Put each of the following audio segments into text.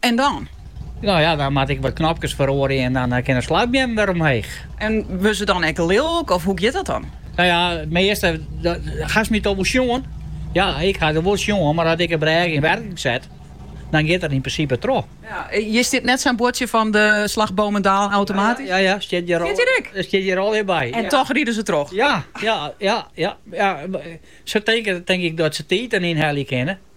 En dan? No ja, dan moat ik wat knopkes feroarje en dan kin de slagbeam wer omheech. En wurdt se dan ek lilk of hoe giet dat dan? No ja, it measte, hast my toch wol sjoen? Ja, ik ha dy wol sjoen, mar as ik de brêge yn werking set, dan giet dat yn prinsipe troch. Ja, hjir stiet net sa'n buordsje fan de slagbomen dalen automatysk? Ja, ja, stiet hjir al. Dat stiet hjir allegear by. En toch ride se troch? Ja, ja, ja, ja. Se tinke dat se tiid dêr ynhelje kinne.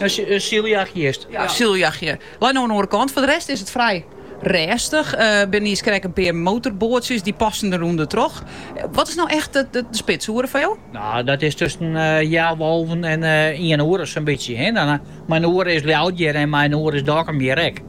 In syljachtjist. Ja, in syljachtje. Lei no oan 'e oare kant. Foar de rest is it frij rêstich. Binne niiskrekt in pear motorboatsjes, dy passen der ûnder troch. Wat is no echt de spitsoere foar jo? No, dat is tusken healwei-alven en iene oere, sa'n bytsje. Mei in oere is Ljouwert hjir en mei in oere is Dokkum hjir ek.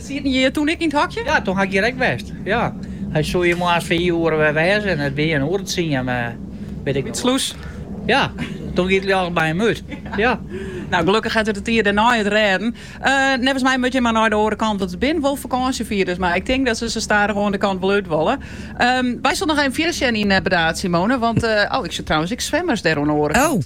Sieten je toen ek yn it hokje? Ja, toen ha ik hjir ek west. Ja. Hy soe hjir moarns fiif oere wer wêze en it wie in oere tsien, wit ik noch wol. By de slûs? Ja, toen gie it ljocht by him út. Ja. Nou, gelukkich hat er de tiid dêrnei it noch rêden. Neffens my moatte je mar nei de oare kant, want it binne wol fakânsjefierders, mar ik tink dat se sa stadichoan de kant wol út wolle. Wy soene noch even fierder sjen yn Burdaard, Simone, want, oh, ik sjoch trouwens ek swimmers dêr oan de oare kant.